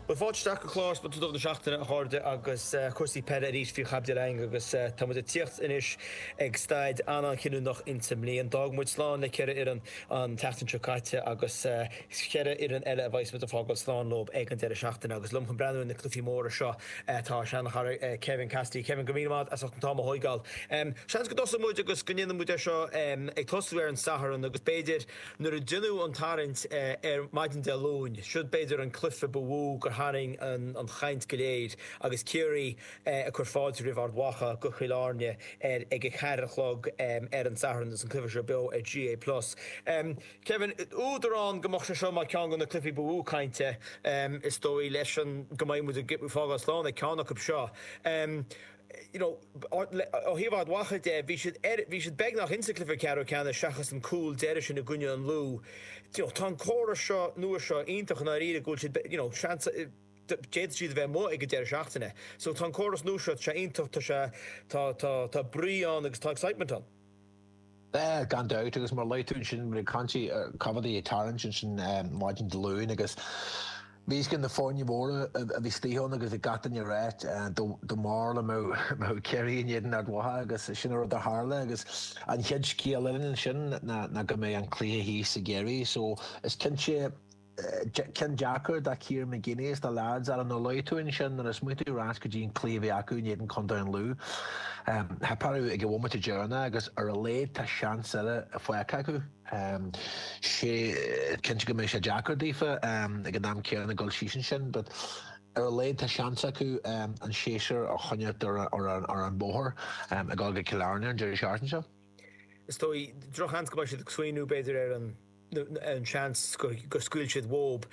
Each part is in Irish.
Bhuel, fáilte isteach go clár speisialta na seachtaine, a chairde, agus cúrsaí peile arís faoi chaibidil againn agus tá muid ag tíocht anois ag staid an-, an-chinniúnach insa mbliain. D'fhág muid slán le ceithre fhoireann an tseachtain seo caite agus cheithre fhoireann eile a bheidhs muid ag fágáil slán leo ag an deireadh seachtaine agus liom chun breathnú ar na cluifí móra seo tá ár sean-chara Kevin Cassidy. Kevin, go raibh míle maith agat as ucht an t-am a thóigeáil. Seans go dtosaí muid agus go ndéanfaidh muid é seo ag tosú ar an Satharn agus b'fhéidir, Nuair a deineadh an tarraingt ar maidin Dé Luain, siod é b'fhéidir an cluife ba mhó gur tharraing an chaint go léir agus Ciarraí ag cur fáilte roimh Ard Mhacha go Cill Airne ar ag a ceathair a chlog ar an Satharn agus an cluife seo beo ar GA plus. Kevin, údar ann go mbeadh sé seo mar ceann go na cluifí ba mhó cainte is dóigh leis an go mbeidh muid ag fágáil slán le ceann acu seo. Ó thaobh Ard Mhacha de, bhí siad ar, bhí siad beagnach insa gCluiche Ceathrú Ceannais seachas an cúl deiridh sin i gcoinne an Lú. Tá an córas seo nua seo iontach i ndáiríre go bhfuil siad, you know, seans, d'fhéadfadh siad a bheith amuigh ag an deireadh seachtaine. So tá an córas nua seo, tá sé iontach, tá sé, tá, tá, tá brí ann agus tá excitement ann. Gan dabht, agus mar a luaigh tú ansin, bhí cinnte cad é an tarraingt ansin maidin Dé Luain agus bhí a fhios againn na foirne mhóra a bhí istigh ann agus bhí gach duine ag rá, tá a fhios agat, mar dá mbeadh mbeadh Ciarraí in éadan Ard Mhacha agus sin an rud a tharla agus an chéad scéal eile ansin ná go mbeidh an cluiche thíos i gCiarraí so is cinnte Ceann deacair do Kieran McGeeney is na leaids mar a luaigh tú ansin nuair a smaoiníonn tú ar ais go dtí an cluiche a bhí acu in éadan Contae an Lú. Theip orthu ag an bhomaite deireanach agus ar a laghad tá seans eile faighte acu. Is cinnte go mbeidh sé deacair daofa ag an am céanna dul síos ansin, but ar a laghad tá seans acu an séasúr a choinneáil ar an bhóthar ag dul go Cill Airne an deireadh seachtaine seo. Is dóigh drochsheans go mbeidh siad ag smaoiniú b'fhéidir ar an an seans gur scaoil siad uathub.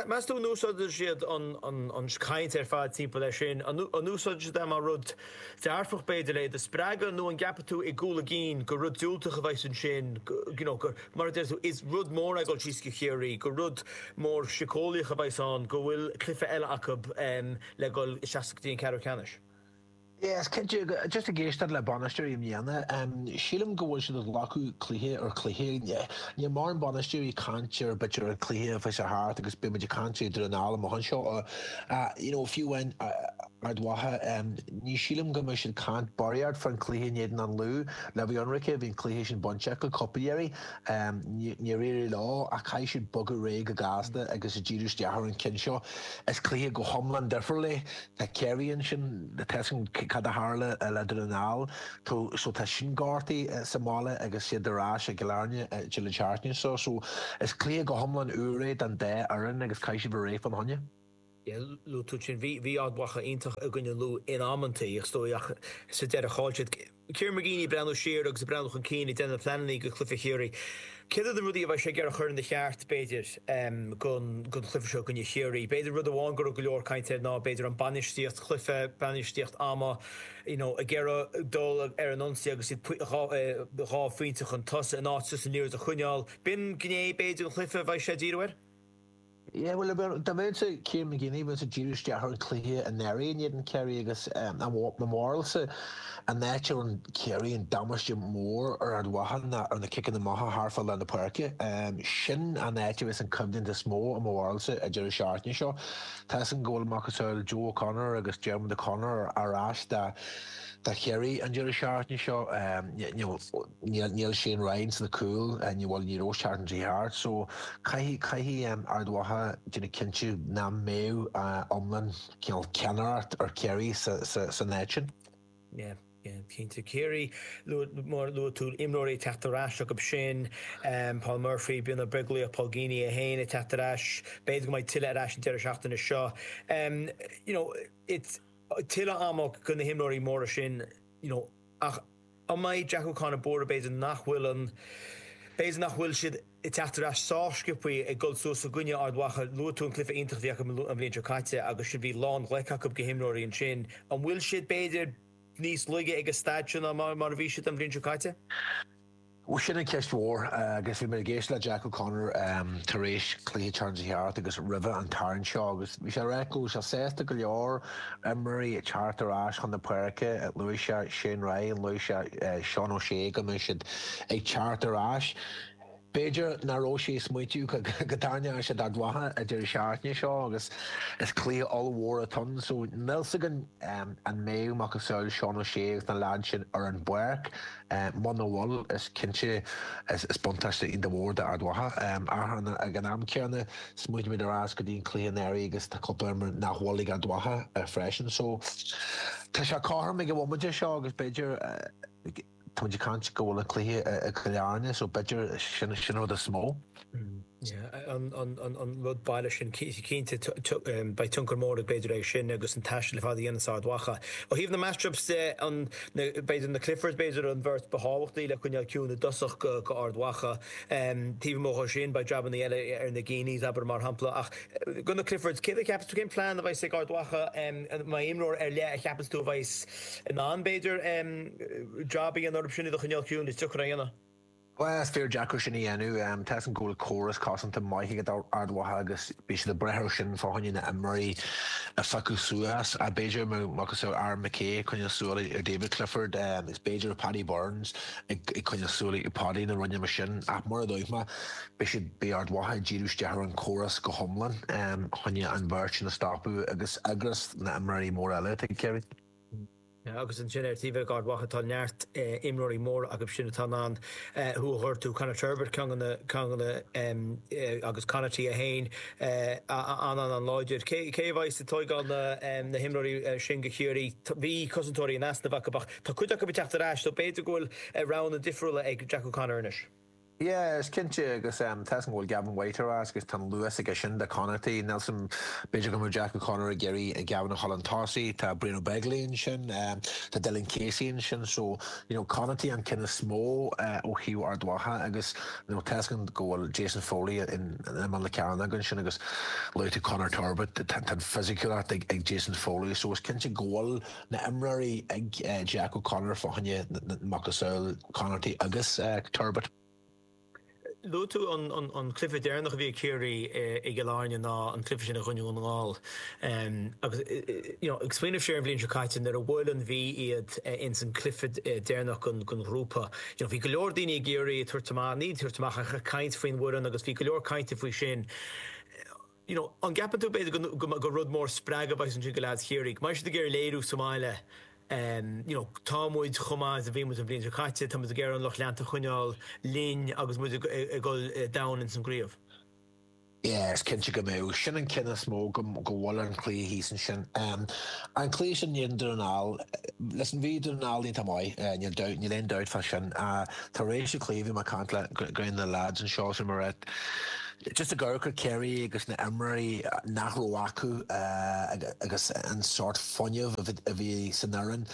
Meas tú an úsáideann siad an chaint ar fad timpeall air sin? An úsáideann siad é mar rud dearfach, b'fhéidir, le do spreagadh nó an gceapann tú i gcúl a gcinn gur rud diúltach a bheas ansin, you know, gur, mar a deir tú, is rud mór é dul síos go Ciarraí, gur rud mór síceolaíoch a bheas ann go bhfuil cluiche eile acu le dhul isteach go dtí an ceathrú ceannais? Yes, cinnte, just ag éisteacht le bainisteoirí i mbliana, sílim go bhfuil siad ag glacadh cluiche ar chluiche. Níl mórán bainisteoirí ag caint ar bith ar an cluiche atá chuaigh thart agus b'fhéidir ag caint ar an am amach anseo. You know, fiú amháin Ard Mhacha, ní sílim go mbeidh siad ag caint barraíocht faoin cluiche in éadan an Lú. Le bheith ionraice, bhí an cluiche sin bainte acu, cúpla iarraidh. Níor éirigh leo ach caithfidh siad bogadh réidh go gasta agus díriú isteach ar an ceann seo. Is cluiche go hiomlán difriúil é. Tá Kerry ansin, tá's againn, cad a tharla le Dún na nGall? Tá, so tá sin gortaithe sa mbaile agus siad ar ais i gCill Airne deireadh seachtaine seo. So is cluiche go hiomlán úr é don dá fhoireann agus caithfidh siad bheith réidh fán choinne. Yeah, luaigh tú ansin. Bhí, bhí Ard Mhacha iontach i gcoinne Lú in amantaí, is dóigh, ach sa deireadh chaill siad. Kieran McGeeney ag breathnú siar agus ag breathnú chun cinn ag déanamh pleananna do chluife Chiarraí. Céard iad na rudaí a bheidh sé ag iarraidh a chur ina cheart, b'fhéidir, don chluife seo i gcoinne Chiarraí. B'fhéidir rud amháin go raibh go leor cainte air ná b'fhéidir an bainistíocht chluife, bainistíocht ama, you know ag iarraidh dul ar an ionsaí agus iad dhá phointe chun tosaigh in áit just an liathróid a choinneáil. B'in gné, b'fhéidir, den chluife a bheidh sé ag díriú air. Yeah, bhuel dá mbeinnse Kieran McGeeney, bheinnse ag díriú isteach ar an cluiche anuraidh in éadan Kerry agus um, i mo bharúlsa an áit a rinn Kerry an damáiste mór ar Ard Mhacha ná ar na ciceanna amach thart fá lár na páirce. Um, sin an áit a bheas an coimhlint is mó i mo bharúlsa an deireadh seachtaine seo. Tá's againn go bhfuil macasamhail Joe O'Connor agus Diarmuid O'Connor ar ais dá dá Kerry an deireadh seachtaine seo um, you know, Níl Shane Ryan sna cúil, bhuel ní raibh sé an tseachtain seo thart, so caithfidh, caithfidh Ard Mhacha déanamh cinnte nach mbeidh iomlán cineál ceannaireacht ar Chiarraí sa, sa, san áit sin. Yeah, yeah, cinnte. Ciarraí, luaigh, mar a luaigh tú, imreoirí ag teacht ar ais acu sin, Paul Murphy, Brian Ó Beaglaoich, Paul Geaney é féin ag teacht ar ais, b'fhéidir go mbeidh tuilleadh ar ais an deireadh seachtaine seo. You know, it's, tuilleadh ama go na himreoirí móra sin, you know, ach, An mbeidh Jack O'Connor buartha? B'fhéidir nach bhfuil an. B'fhéidir nach bhfuil siad ag teacht ar ais sách sciopthaí ag dul suas i gcoinne Ard Mhacha. Luaigh tú an cluife iontach a bhí acu an bhliain seo caite agus sin bhí lán ghlaic acu go himreoirí ansin. An bhfuil siad, b'fhéidir, níos laige ag an staid seo ná mar a bhí siad an bhliain seo caite? Sin an ceist mhór agus bhí mé ag éist le Jack O'Connor tar éis cluiche an tSathairn seo thart agus roimhe an tarraingt seo agus bhí sé ag rá go bhfuil sé sásta go leor Imreoirí ag teacht ar ais chun na páirce, luaigh sé Shane Ryan, luaigh sé Seán O'Shea go mbeidh siad ag teacht ar ais. B'fhéidir nach raibh sé ag smaointiú go dtarraingeoidh siad Ard Mhacha an deireadh seachtaine seo agus is cluiche ollmhór atá ann so níl's againn an mbeidh macasamhail Seán O'Shea agus na leaids sin ar an bpáirc. Muna bhfuil, is cinnte is buntáiste iontach mhór d'Ard Mhacha. Ach ag an am céanna, smaoinímid ar ais go dtí an cluiche anuraidh agus tá cúpla imreoir nach bhfuil ag Ard Mhacha freisin. So, tá sé cothrom ag an bhomaite seo agus b'fhéidir, táimid ag caint go bhfuil an cluiche i gCill Airne, so b'fhéidir sin an rud is mó. an rud baile sin. Cinnte beidh tionchar mór ag b'fhéidir aige sin agus an taisteal ar fad a dhéanamh as Ard Mhacha. Ó thaobh na matchups de, an b'fhéidir na Cliffords b'fhéidir an bheirt ba thábhachtaí le coinneáil ciúin i dtosach go go Ard Mhacha. Taobh amuigh de sin beidh jabannaí eile ar na Geeneys abair mar shampla ach go na Cliffords. Céard a cheapas tú cén plean a bheidh's ag Ard Mhacha má imreoir ar leith a cheapas tú a bheidh's in ann b'fhéidir jab a dhéanamh orthu sin iad a choinneáil ciúin is deacair a dhéanamh? Bhuel, is fíor deacair sin a dhéanamh. Tá 's againn go bhfuil córas cosanta maith ag Ard Mhacha agus bhí siad ag brath ar sin fá choinne na n-imreoirí a phiocadh suas. B'fhéidir mura mbeadh Aaron McKay ag coinneáil súil ar David Clifford is b'fhéidir Paddy Burns ag coinneáil súil ar Paudie nó rud éigin mar sin ach mar a dúirt mé, beidh siad, beidh Ard Mhacha ag díriú isteach ar an córas go hiomlán fá choinne an bheirt sin a stopadh agus ar ndóigh na n-imreoirí mór eile, tuigtear. Agus ansin ar thaobh Ard Mhacha tá neart imreoirí móra acu sin atá in ann thú a ghortú, Conor Turbitt ceann de na ceanna agus Conaty é féin an-an-an-láidir. Cé a bheidh's ag tóigeáil na na himreoirí sin go Ciarraí? Bhí cosantóirí in easnamh acu ach tá cuid acu ag teacht ar ais so b'fhéidir go bhfuil roghanna difriúla ag Jack O'Connor anois. Yeah, is cinnte agus em tá 's againn go bhfuil Gavin White ar ais agus tá an luas aige sin do Conaty, níl 's agam em b'fhéidir go mbeadh Jack O'Connor ag iarraidh eh Gavin a chur chun tosaigh, tá Brian Ó Beaglaoich ansin, em tá Dylan Casey ansin so you know Conaty an ceann is mó eh ó thaobh Ard Mhacha agus you know tá 's againn go bhfuil Jason Foley in in i mbun na ceann againn ansin agus luaigh tú Conor Turbitt tá an fisiciúlacht ag ag Jason Foley so is cinnte go bhfuil Na h-imreoirí ag Jack O'Connor fá choinne macasamhail Conaty agus Turbitt. Luaigh tú an cluiche deireanach a bhí ag Ciarraí i gCill Airne ná an cluiche sin i gcoinne Dhún na nGall agus ag smaoineamh siar an bhliain seo caite nuair a bhuail an Mhí iad ins an cluiche deireanach den ghrúpa bhí go leor daoine ag iarraidh tabhairt amach, ní tabhairt amach ach caint faoin bhfoireann agus bhí go leor cainte faoi sin. you know, an gceapann tú b'fhéidir go mbeadh rud mór spreagtha a bheidh's ansin go leads Chiarraí. Mar beidh siad ag iarraidh léiriú sa mbaile ehm, you know, tá muid chomh maith is a bhí muid an bhliain seo caite, tá muid ag iarraidh an lucht leanta a choinneáil linn agus muid ag ag dhul eh, domhain ins an gcraobh. Yeah, is cinnte go mbeadh. Sin an ceann is mó go go bhfuil ar an chluiche thíos ansin. Ehm, an cluiche sin in éadan Dún na nGall, listen, bhí Dún na nGall iontach maith, eh, níl doubt, níl aon doubt fá sin. Ah, tar éis an chluiche bhí mé ag caint le ceann de na leads anseo, sin mar rith. Just ag amharc ar Ciarraí agus na imreoirí nach raibh acu agus an sórt fuinneamh a bhí san fhoireann,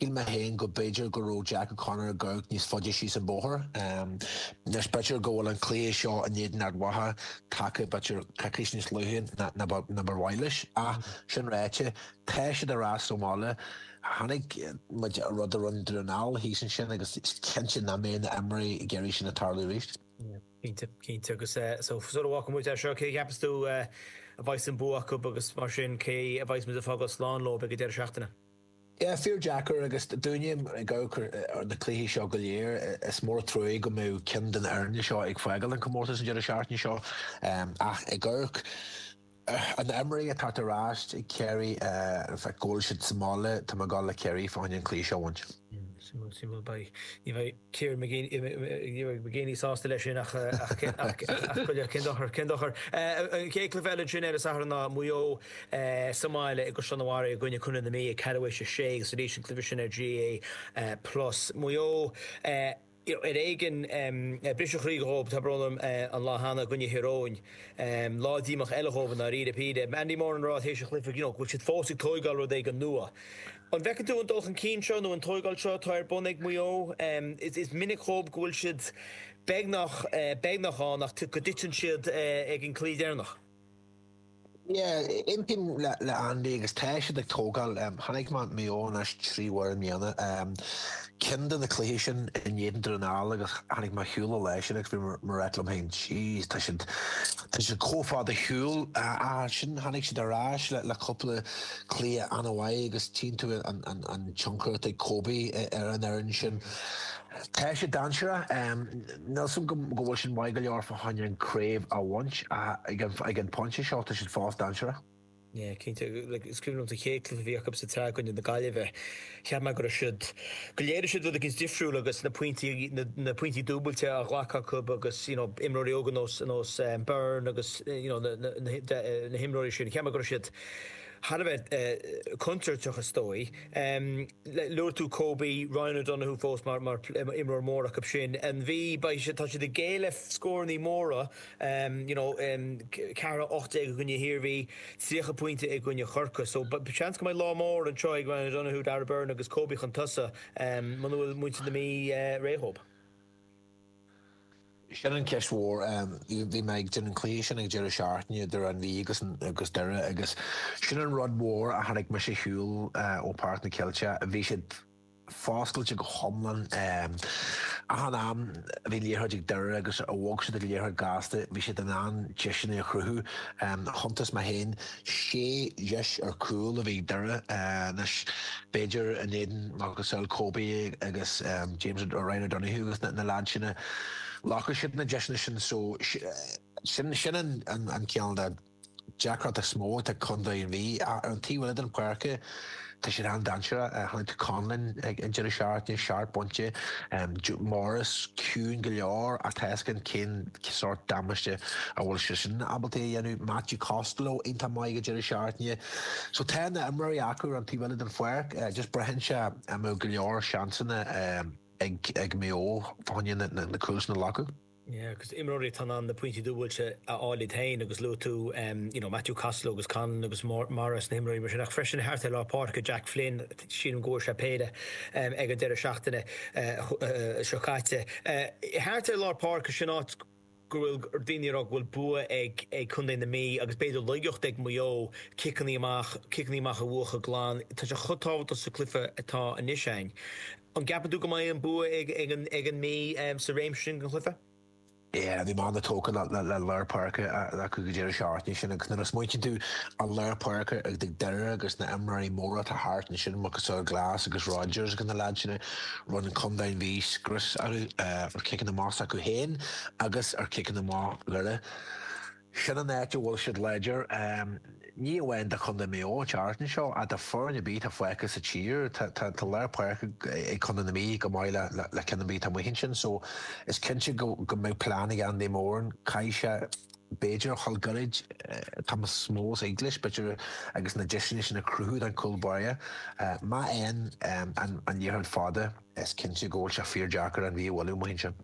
shíl mé féin go b'fhéidir go raibh Jack O'Connor ag amharc níos faide síos an bóthar. Anois b'fhéidir go bhfuil an cluiche seo in éadan Ard Mhacha tagtha b'fhéidir coicís níos luaithe ná ba mhaith leis ach sin ráite, tá siad ar ais sa mbaile. Chonaic muid an rud a rinne Dún na nGall thíos ansin agus is cinnte nach mbeidh na imreoirí ag iarraidh sin a tharlú arís. Cinnte, cinnte agus so sula bhfágfaidh muid é seo, cé a cheapas tú a bheidh's an bua acu agus mar sin cé a bheidh's muid ag fágáil slán leo ag an deireadh seachtaine? Yeah, fíor deacair agus dúinne ag amharc ar na cluichí seo go léir, is mór a truaigh go mbeidh ceann den fhoirne seo ag fágáil an comórtas an deireadh seachtaine seo ach ag amharc Na himreoirí atá ar ais ag Ciarraí, go bhfuil siad sa mbaile, tá mé ag goil le Ciarraí fá choinne an cluiche seo a bhaint. Suimiúil, suimiúil. Beidh, ní bheidh Kieran McGeeney, ní bheidh McGeeney sásta le sin ach, ach, ach, ach, ach go leor, cén dochar, cén dochar. An chéad cluiche eile ansin ar an Satharn ná Maigh Eo sa mbaile i gCaisleán an Bharraigh i gcoinne Contae na Mí ag ceathrú théis a sé agus arís an cluiche sin ar GAA plus. Maigh Eo. Ar éigin briseadh croí dhóib, tá brón orm, an lá cheana i gcoinne Thír Eoghain. Lá díomach eile dhóibh i ndáiríre. Bhí Andy Moran a rá théis an chluiche, you know, go bhfuil siad fós ag tóigeáil rud éigin nua. An bhfeiceann tú an dul chun cinn seo nó an tóigeáil seo atá ar bun ag Maigh Eo? Is minic dhóib go bhfuil siad beagnach, beagnach ann ach go dtiteann siad ag an gclaí deireanach. Yeah, aontaím le Andy agus tá siad ag tógáil. Chonaic mé Maigh Eo anois trí uair i mbliana. Ceann de na cluichí sin in éadan Dún na nGall agus tháinig mé ar shiúl i leith sin agus bhí mé ag ráit liom féin jeez tá siad tá siad comh fada ar shiúl ach ansin tháinig siad ar ais le cúpla cluiche ana mhaith agus tchíonn tú an tionchar atá ag Kobe ar an fhoireann sin. Tá siad dainséarach. Níl fhios agam go bhfuil sin maith go leor fá choinne an craobh a bhaint ach ag an pointe seo tá siad fós dainséarach. Yeah, cinnte. Like, is cuimhin liom sa chéad cluiche a bhí acu sa tsraith i gcoinne na Gaillimhe, cheap mé go raibh siad, go léirigh siad rud éicint difriúil agus na pointí, na, na pointí dúbailte á ghlacadh acu agus, you know, imreoirí óga nós, nós eh, Beirne agus, eh, you know, na, na, na, hi- de- eh, na himreoirí sin, cheap mé go raibh siad thar a bheith eh, contúirteach is dóigh. Luaigh tú Kobe, Ryan O'Donoghue fós mar imreoir mór acu ansin. An Mhí, tá siad ag géilleadh scóranna móra, you know, 4-18 i gcoinne hIarmhí, 30 pointe i gcoinne Chorcaí. So seans go mbeidh lá mór anseo ag Ryan O'Donoghue, Darragh Beirne agus Kobe chun tosaigh muna bhfuil muintir na Mí réidh dhóibh. Sin an cheist mhór. Bhí mé ag déanamh an cluiche sin ag deireadh seachtaine, idir an Mhí agus Doire, agus sin an rud mór a tháinig mise ar shiúl ó Páirc na gCeilteach. Bhí siad foscailte go hiomlán. Achan am a bhí liathróid ag Doire agus a bhog siad an liathróid gasta, bhí siad in ann deiseanna a chruthú. Chuntais mé féin Sé dheis ar cúl a bhí ag Doire anois b'fhéidir in éadan macasamhail Kobe agus James Ryan O'Donoghue agus na leaids sin a ghlacfadh siad na deiseanna sin so sin an ceann de deacrachtaí is mó atá ag Contae an Mhí ach ar an taobh eile den pháirc Tá siad an-dainséarach. Tháinig Conlon ag an deireadh seachtaine, seacht bpointe dó, Morris ciúin go leor ach tá a fhios againn cén sórt damáiste a bhfuil seisean ábalta a dhéanamh. Matthew Costello iontach maith ag an deireadh seachtaine. So tá na imreoirí acu ar an taobh eile den pháirc, just braitheann sé an mbeidh go leor seansanna ag Maigh Eo fá choinne na cúil sin a ghlacadh. Agus imreoirí atá in ann na pointí dúbailte a fháil iad féin agus luaigh tú you know Matthew Costello agus Conlon agus Morris na himreoirí mar sin ach freisin thart ar lár páirce Jack Flynn sílim go bhfuair sé péire ag an deireadh seachtaine seo caite. Thart ar lár páirce sin áit go bhfuil daoine ag rá go bhfuil bua ag Contae na Mí agus b'fhéidir laigeacht ag Maigh Eo ciceanna amach ciceanna amach a bhuachan glan. Tá sé chomh tábhachtach sa cluiche atá anois ann. An gceapann tú go mbeidh an bua ag an Mí sa réimse sin den chluiche? Yeah, bhí mé an-tógtha le lár páirce acu go deireadh seachtaine sin agus nuair a smaoitíonn tú an lár páirce atá ag Doire agus na imreoirí móra atá thart ansin, macasamhail Glass agus Rodgers agus na leaids sin, rinne Contae an Mhí scrios orthu ar chiceanna amach s'acu féin agus ar chiceanna amach Dhoire. Sin an áit a bhfuil siad láidir. Ní amháin do Chontae Maigh Eo, thart anseo, ach do foireann ar bith atá fágtha sa tír. Tá lár páirce ag Contae na Mí chomh maith le ceann ar bith atá amuigh ansin so is cinnte go mbeidh plean ag Andy Moran. Caithfidh sé b'fhéidir a dhul gairid tamall mó sa English b'fhéidir agus na deiseanna sin a chruthú don chúl báire. Má théann an liathróid fada is cinnte go bhfuil sé fíor deacair an Mhí a bhualadh amuigh ansin.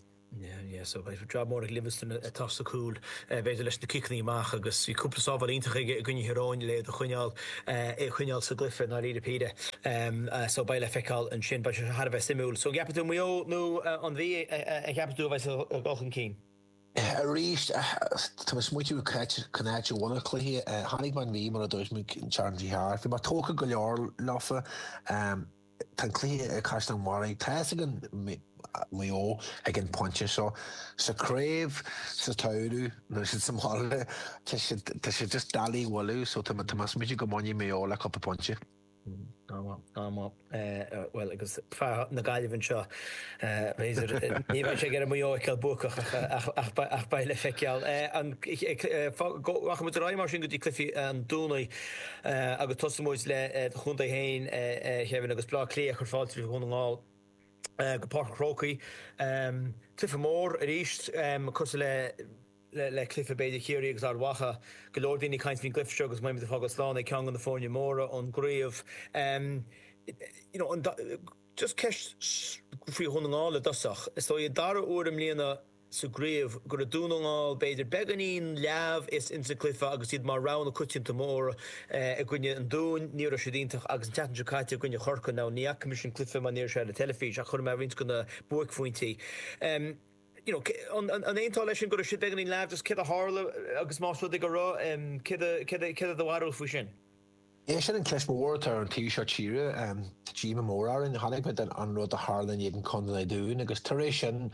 Jab mór ag Livingstone atá sa cúl, b'fhéidir leis na ciceanna amach agus bhí cúpla sábháil iontach aige i gcoinne Thír Eoghain le iad a choinneáil, é a choinneáil sa gcluiche i ndáiríre píre. So beidh le feiceáil ansin, beidh sé thar a bheith suimiúil. So an gceapann tú Maigh Eo nó an Mhí a cheapann tú a bheidh ag dul chun cinn? Arís, tá mé ag smaoitiú cá háit, cén áit a bhfuil an cluiche. Chonaic mé an Mhí mar a dúirt mé an tseachtain a chuaigh thart. Bhí mé tógtha go leor leofa. Tá an cluiche i gCaisleán an Bharraigh, tá a fhios againn Maigh Eo ag an phointe seo. Sa craobh sa samhradh nó sin sa mbaile, tá siad tá siad just doiligh a bhualadh so tá tá mé ag smaoitiú go mbainfidh Maigh Eo le cúpla pointe. An bhfuil? An bhfuil? Bhuel agus fear na Gaillimhe anseo b'fhéidir ní bheidh sé ag iarraidh Maigh Eo a fheiceáil buacach ach ach beidh le feiceáil. Rachaidh muid ar aghaidh mar sin go dtí cluichí an Domhnaigh. agus tosaíonn muid le do chontae féin a Kevin agus Bleá Cliath ag cur fáilte roimh Dhún na nGall go Páirc an Chrócaigh. Cluiche mór arís cosúil le le cluiche b'fhéidir Chiarraí agus Ard Mhacha. Go leor daoine ag caint faoin gcluife seo agus beidh muid ag fágáil slán ag ceann de na foirne móra ón gcraobh. You know just ceist faoi Dhún na nGall i dtosach. Is dóigh dara uair i mbliana, sa gcraobh go raibh Dún na nGall b'fhéidir beagáinín leamh is insa gcluiche agus iad mar rogha na coitianta móra i gcoinne an Dúin. Ní raibh siad iontach agus an tseachtain seo caite i gcoinne Chorcaigh, now ní fhaca mise an cluiche mar ní raibh sé ar an teilifís ach chonaic mé roinnt de na buaicphointí. You know, an aontófá leis sin go raibh siad beagáinín leamh, just céard a tharla agus más rud é go raibh, céard a, céard a, céard a do bharúil faoi sin? Is é sin an cheist mhór atá ar an taobh seo tíre. Tá díomá mór orainn. Chonaic muid an rud a tharla in éadan Contae an Dúin agus tar éis sin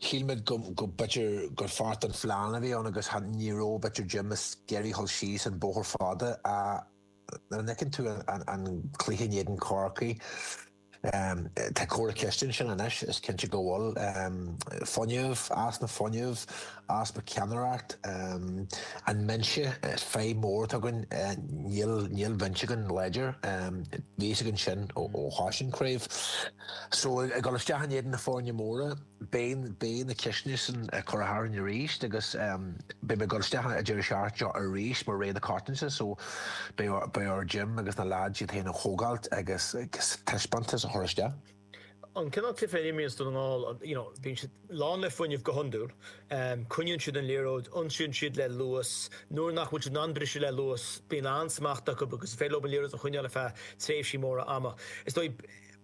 shíl muid go b'fhéidir gur pháirt den phlean a bhí ann agus ní raibh b'fhéidir Jim ag iarraidh dhul síos an bóthar fada ach nuair a fheiceann tú an cluiche in éadan Corcaigh. Tá corr-cheist ansin anois, is cinnte go bhfuil. Fuinneamh, easpa fuinnimh, easpa ceannaireacht. An mbinse, is fadhb mhór atá againn, níl bhinse againn láidir. Bhí a fhios againn sin ó thús an chraobh. So, ag dul isteach in éadan na foirne móra. Beidh na ceisteanna sin á gcur orainn arís agus beidh muid ag dul isteach Dé Domhnaigh seo arís mar rogha na coitiantachta so beidh ar Jim agus na lads iad féin a thógáilt agus taispeántas a chur isteach. An cineál cluiche a imríonns Dún na nGall, you know, bíonn siad lán le fuinneamh go hiondúil. Coinníonn siad an liathróid, ionsaíonn siad le luas, nuair nach bhfuil siad in ann briseadh le luas bíonn an-smacht acu agus is féidir leo an liathróid a choinneáil ar feadh tréimhsí móra ama. Is dóigh,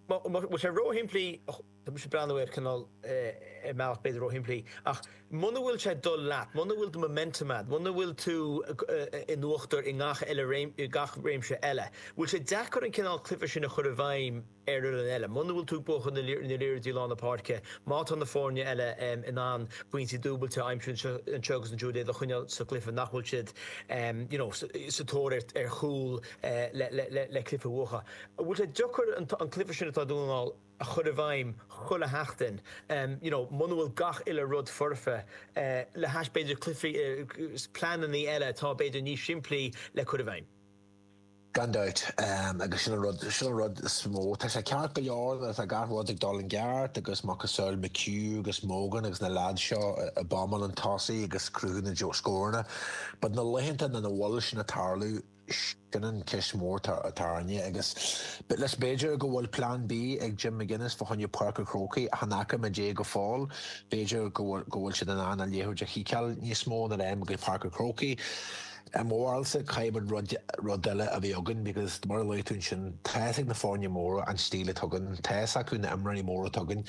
bhuel, tá sé róshimplí. Tá mise ag breathnú ar cineál ar mbealach b'fhéidir ó shimplí ach muna bhfuil sé dul leat, muna bhfuil do momentum agat, muna bhfuil tú in uachtar i ngach eile i gach réimse eile, bhfuil sé deacair an cineál cluiche sin a chur i bhfeidhm ar fhoireann eile. Muna bhfuil tú ag buachan na liathróide i lár na páirce, má tá na foirne eile in ann pointí dúbailte a aimsiú anseo agus ansiúd iad a choinneáil sa gcluiche nach bhfuil siad you know sa tóir ar chúl le cluiche a bhuachan. Bhfuil sé deacair an cluiche sin atá ag Dún na nGall. a chur i bhfeidhm chuile sheachtain you know muna bhfuil gach uile rud foirfe le hais b'fhéidir cluichí is pleanannaí eile atá b'fhéidir níos simplí le cur i bhfeidhm. Gan dabht agus sin an rud sin an rud is mó tá sé ceart go leor nuair atá gach rud ag dul i gceart agus macasamhail McHugh agus Mogan agus na leaids seo ag bombáil chun tosaigh agus ag cruthú na scóranna but na laethanta nach nach bhfuil sin ag tarlú Sin an cheist mhór atá orainne agus is b'fhéidir go bhfuil plean B ag Jim McGuinness fá choinne Páirc an Chrócaigh ach ní fhaca muid é go fóill b'fhéidir go bhfuil siad in ann an liathróid a chiceáil níos mó nuair a théann muid go dtí Páirc an Chrócaigh. I mo bharúilsa caithfidh muid rud eile a bheith againn because mar a luaigh tú ansin tá fhios ag na foirne móra an stíl atá againn, tá fhios acu na imreoirí móra atá againn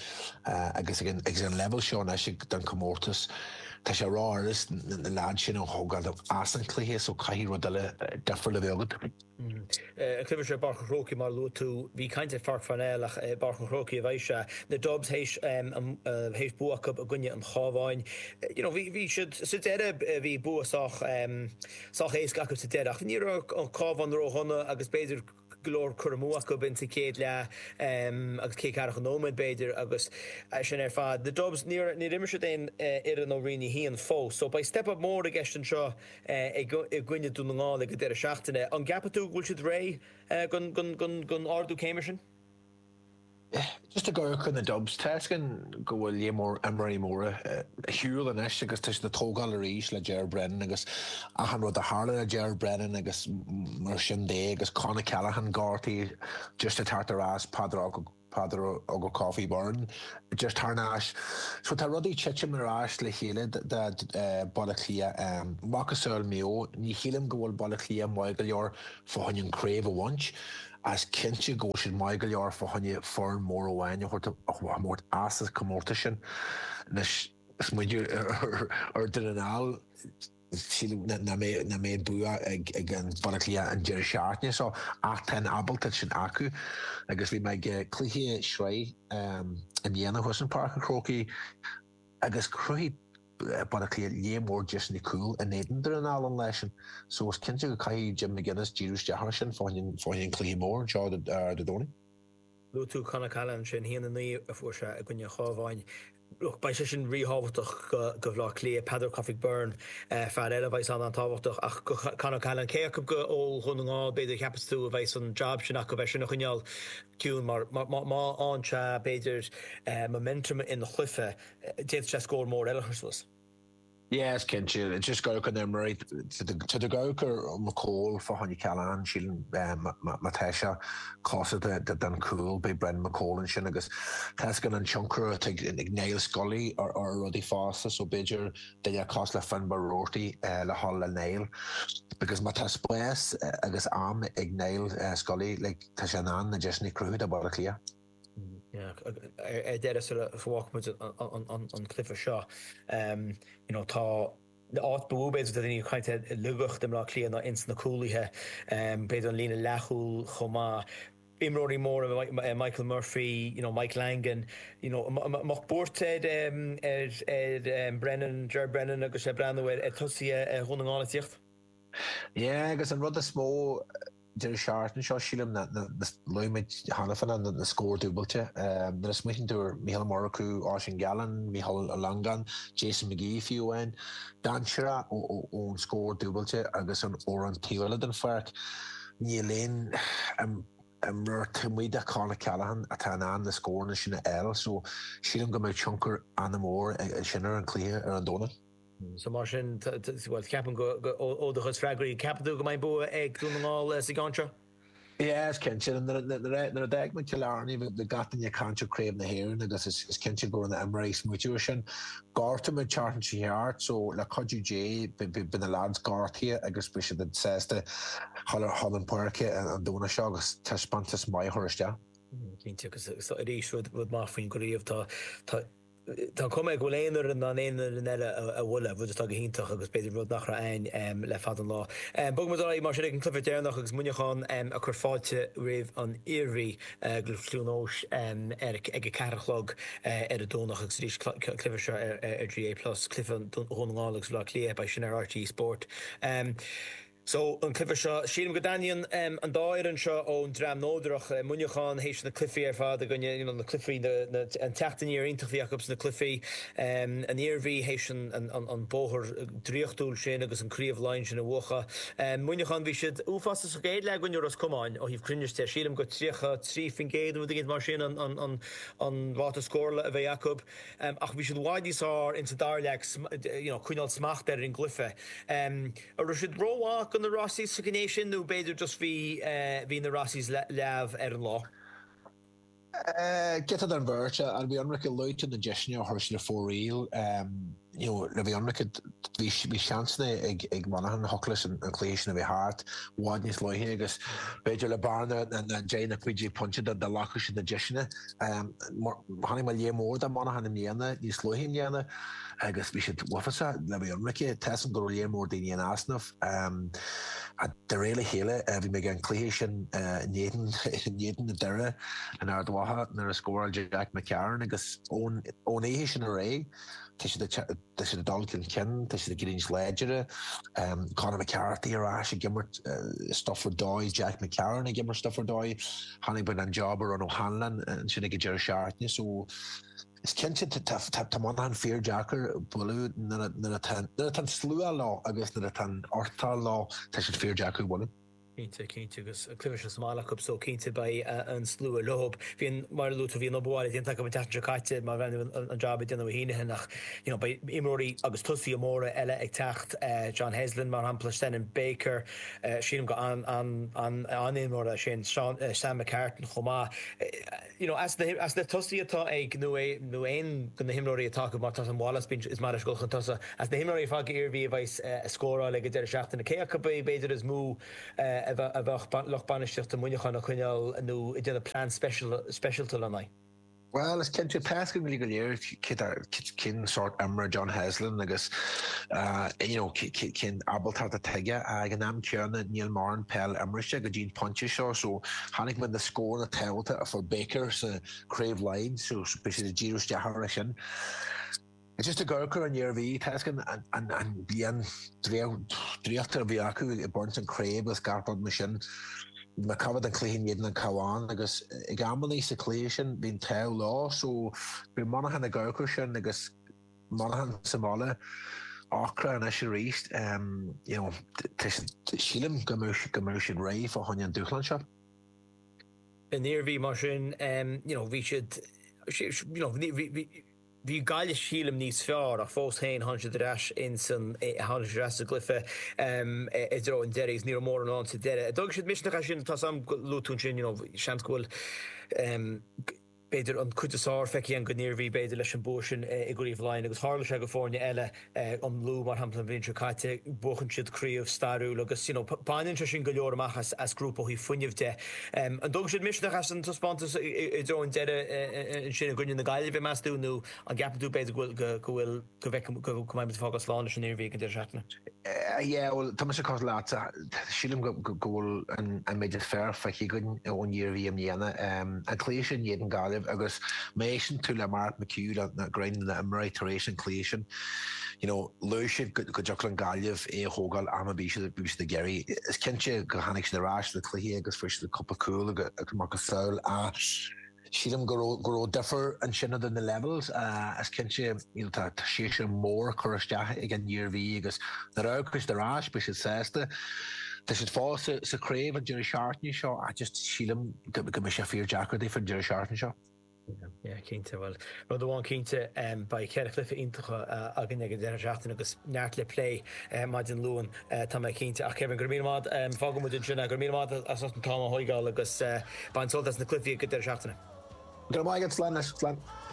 agus ag an leibhéal seo anois den comórtas, Tá sé ró-éasca na leaids sin a thógáil as an cluiche so caithfidh rud eile difriúil a bheith agat. An cluiche seo i bPáirc an Chrócaigh mar a luaigh tú, bhí caint ar Pháirc Pharnell ach i bPáirc an Chrócaigh a bheidh sé. Na Dubs théis bua acu i gcoinne an Chábháin. You know bhí siad sa deireadh bhí bua sách sách éasca acu sa deireadh ach ní raibh an Cábhán ró-dhona agus b'fhéidir go leor cur amú acu b'in sa chéad leath agus cé ceathracha nóiméad b'fhéidir agus sin ar fad. The Dubs níor níor imir siad aon fhoireann ó Roinn a hAon fós so beidh step up mór i gceist anseo i gcoinne Dún na nGall ag an deireadh seachtaine. An gceapann tú go bhfuil siad réidh go go go go n-ardú céime sin? Just i gcomhair na Dubs, tá fhios againn go bhfuil líon mór imreoirí móra ar shiúl anois agus tá siad ag tógáil arís le Ger Brennan agus achan rud a tharla le Ger Brennan agus mar sin de agus Con O'Callaghan gortaithe just ag teacht ar ais, Peadar Peadar Ó Cofaigh Byrne just tar éis. So tá rudaí ag titim ar ais le chéile do Baile Átha Cliath. Macasamhail Mhaigh Eo, ní shílim go bhfuil Baile Átha Cliath maith go leor, fá choinne an craobh a bhaint. is cinnte go bhfuil siad maith go leor fá choinne foireann mór amháin a thabhairt a thabhairt as sa comórtas sin. Anois, más muide é Dún na nGall. sílim nach mbeidh nach mbeidh bua ag Baile Átha Cliath an deireadh seachtaine seo ach tá an abaltacht sin acu agus bhí mé ag cluiche sraith i mbliana thuas i bPáirc an Chrócaigh agus chruthaigh Baile Átha Cliath líon mór deiseanna cúl in éadan Dún na nGall leis sin so is cinnte go caithfidh Jim McGuinness díriú isteach air sin fá choinne an cluiche mór anseo Dé Domhnaigh. Luaigh tú Con O'Callaghan, sin a haon a naoi a fuair sé i gcoinne an Chabháin. Look, beidh sé sin ríthábhachtach go go Bhleá Cliath. Peadar Ó Cofaigh Byrne, fear eile a bheidh an an-tábhachtach ach Con O'Callaghan. Cé acu go ó Dhún na nGall, b'fhéidir, a cheapas tú a bheidh san jab sin acu é sin a choinneáil ciúin mar má fhaigheann sé b'fhéidir momentum ina chluiche, D'fhéadfadh sé scór mór eile a chur suas. Yes, cinnte. agus gach aon uair. Tá go gcuirtear McCole fá choinne O'Callaghan. Sílim má tá sé cóngarach don chúl beidh Brendan McCole ansin agus tá fhios againn an tionchar atá ag Niall Scully ar rudaí fosta so b'fhéidir duine cosúil le Finbar Roarty le dhul le Niall because má tá spás agus am ag Niall Scully like tá sé in ann na deiseanna a chruthú do Bhaile Átha Cliath. Ar deireadh, sula bhfágfaidh muid an cluiche seo, you know, tá an áit ba mhó b'fhéidir do dhaoine ag caint ar laigeacht i mBleá Cliath ná ins na cúlaithe, b'fhéidir an líne leathchúl chomh maith. Imreoirí móra, Michael Murphy, you know, Michael Langan, you know, a mbeadh buairt ar Brennan, Ger Brennan agus é ag breathnú ar tosaithe Dhún na nGall a' tíocht. Yeah, agus an rud is mó, Deireadh seachtaine seo, sílim, luaigh muid cheana féin, na scór dúbailte, nuair a smaoitíonn tú ar Micheál Murchú, Oisín Gallen, Micheál Ó Longáin, Jason McGee, fiú amháin, dainséarach ón scór dúbailte agus ar an taobh eile den pháirc, níl aon imreoir diomaite de Con O'Callaghan atá in ann na scóranna sin a fháil so sílim go mbeidh tionchar an-mhór aige sin ar an cluiche ar an Domhnach. So mar sin, bhuel, ceapaim go, ó do chuid freagraí, ceapann tú go mbeidh bua ag Dún na nGall sa gceann seo? Yeah, is cinnte, nuair a d'fhág muid Cill Airne bhí gach duine ag caint ar Craobh na hÉireann agus is cinnte go raibh na imreoirí ag smaoitiú ar sin. Gortaíodh muid an tseachtain seo thart so le cuidiú Dé beidh na lads gortaithe agus beidh siad sásta dhul chun na páirce an Domhnach seo agus taispeántas maith a chur isteach. Cinnte, agus arís rud maith faoin gcraobh, tá Tá an chuma air go bhfuil aon fhoireann in ann aon fhoireann eile a bhualadh, rud atá go hiontach agus b'fhéidir rud nach raibh ann le fada an lá. Bogfaimid ar aghaidh mar sin ag an cluiche deireanach agus Muineachán ag cur fáilte roimh an Iarmhí go Cluain Eois ar ag a ceathair a chlog ar an Domhnach agus arís an cluiche seo ar GAA plus, cluiche Dhún na nGall agus Bhaile Átha Cliath, beidh sin ar rte Sport. So, an cluife seo, sílim go dtaitníonn an dá fhoireann seo ón dream neodrach, Muineachán théis na cluichí ar fad againne, you know, na cluichí, an teacht aniar iontach a bhí acu sna cluichí, an Iarmhí théis an bóthar draíochtúil sin agus an Craobh Laighean sin a bhuachadh. Muineachán, bhí siad uafásach sa gcéad leath in aghaidh Ros Comáin ó thaobh cruinnis de, sílim gur 33% nó rud éigin mar sin an ráta scórála a bhí acu ach bhí siad i bhfad níos fearr insa dara leath ag, you know, coinneáil smacht ar an gcluife. An raibh siad rómhaith do na Rossies sa ghné sin nó b'fhéidir just bhí bhí na Rossies leamh ar an lá? Giota den bheirt le bheith ionraice leat, na deiseanna a chuir siad ar fóraoil you know le bheith ionraice bhí bhí seansanna ag ag Monaghan a thiocfadh leis an an cluiche sin a bheith thart i bhfad níos luaithe agus b'fhéidir le bearna na na deich nó cúig déag pointe dá dá ghlacfadh siad na deiseanna. Chonaic mé léar mór de Monaghan i mbliana níos luaithe i mbliana. agus bhí siad uafásach le bheith ionraice. Tá a fhios agam go raibh léar mór daoine in easnamh. De réir a chéile, bhí mé ag an cluiche sin in éadan Doire in Ard Mhacha nuair a scóráil Jack McCarron agus ón oíche sin ar aghaidh, tá siad ag dul chun cinn, tá siad ag éirí níos láidre. Conor McCarthy ar ais ag imirt stuff ar dóigh, Jack McCarron ag imirt stuff ar dóigh. Chonaic mé an jab a rinn O'Hanlon ansin ag an deireadh seachtaine. Is cinnte tá Muineachán fíordheacair a bhualadh nuair atá an slua leo agus nuair atá an fhoireann leo tá siad fíordheacair a bhualadh. Cinnte, cinnte agus cluiche sa mbaile acu so cinnte beidh an slua leo. Bhí an, mar a luadh tú, bhí an obair bhaile déanta acu an tseachtain seo caite mar bhean an jab a déanamh Ó hIghneithe ach you know beidh imreoirí agus tosaithe móra eile ag teacht, John Heslin mar shampla, Senan Baker, sílim gur an-imreoir é sin, Sam McCartan chomh maith. As na tosaí atá ag, nó é, nó aon de na himreoirí atá acu, mar tá an Wallace bíonn sé ag dul chun tosaigh, as na himreoirí de chuid na hIarmhí a bheas ag scóráil ag an deireadh seachtaine, cé acu ab é b'fhéidir is mó a bheadh lucht bainistíochta Mhuineacháin ag coinneáil nó ag déanamh plean speisialta lena aghaidh. Bhuel, is cinnte, tá a fhios againn go léir. cén sórt imreoir John Heslin agus you know an ábaltacht atá aige. Ag an am céanna níl mórán peil imeartha go dtí an pointe seo so chonaic muid na scóranna tábhachtacha a fuair Baker sa Chraobh Laighean so beidh siad ag díriú isteach ar sin. Is just i gcomhair an Iarmhí tá a fhios againn an bliain draíochta a bhí acu ag baint an Chraobh agus gach rud mar sin. má amharcann tú ar an chluiche in éadan an Chabháin agus ag amannaí sa chluiche sin bhí an t-ádh leo so beidh Monaghan ag amharc air sin agus Monaghan sa mbaile acu anois arís you know sílim go mbeidh siad réidh fá choinne an dúshlán seo. An Iarmhí mar sin you know bhí siad you know bhí Bhí Gaillimh sílim níos fearr ach fós féin tháinig siad ar ais ins an, tháinig siad ar ais sa gcluiche i dtreo an deiridh agus ní raibh mórán ann sa deireadh. Tógfaidh siad misneach as sin, tá sé mar a luaigh tú ansin you know seans go bhfuil b'fhéidir an cuid is fhearr feicthe againn ón Iarmhí b'fhéidir leis an bua sin i gcraobh Laighean agus tharla sé d'fhoirne eile, an Lú mar shampla an bhliain seo caite, buachan siad craobh stairiúil agus you know baineann sé sin go leor amach as grúpa ó thaobh fuinneamh de. An dtógfaidh siad misneach as an taispeántas i dtreo an deireadh ansin i gcoinne na Gaillimhe meas tú nó an gceapann tú b'fhéidir go bhfuil go bhfuil go bhfeicfidh go mbeidh muid ag fágáil slán leis an Iarmhí ag an deireadh seachtaine? Yeah bhuel tá mise cosúil leatsa. Sílim go bhfuil an méid is fearr feicthe againn ón Iarmhí i mbliana. An cluiche sin in éadan Gaillimh agus má éisteann tú le Mark McHugh nó roinnt de na himreoirí tar éis an chluiche sin, you know, luaigh siad go dtiocfadh le Gaillimh é a thógáil am ar bith a bhí siad ag iarraidh. Is cinnte gur tháinig siad ar ais sa chluiche agus fuair siad cúpla cúl amach as. Sílim go raibh go raibh difear ansin idir na levels, is cinnte you know tá tá séasúr mór curtha isteach ag an Iarmhí agus nuair a amharcfaidh siad ar ais beidh siad sásta. Tá siad fós sa sa chraobh an deireadh seachtaine seo ach just sílim go go mbeidh sé fíordheacair daofa an deireadh seachtaine seo. Yeah cinnte, bhuel rud amháin cinnte beidh ceithre chluiche iontacha againn ag an deireadh seachtaine agus neart le plé maidin Luain. Eh, tá mé cinnte. Ach Kevin, go raibh míle maith agat. Em, fágfaidh muid ansin é. Go raibh míle maith agat as ucht an t-am a thóigeáil agus, eh, bain sult as na cluichí ag an deireadh seachtaine. Go raibh maith agat, slán leat, slán.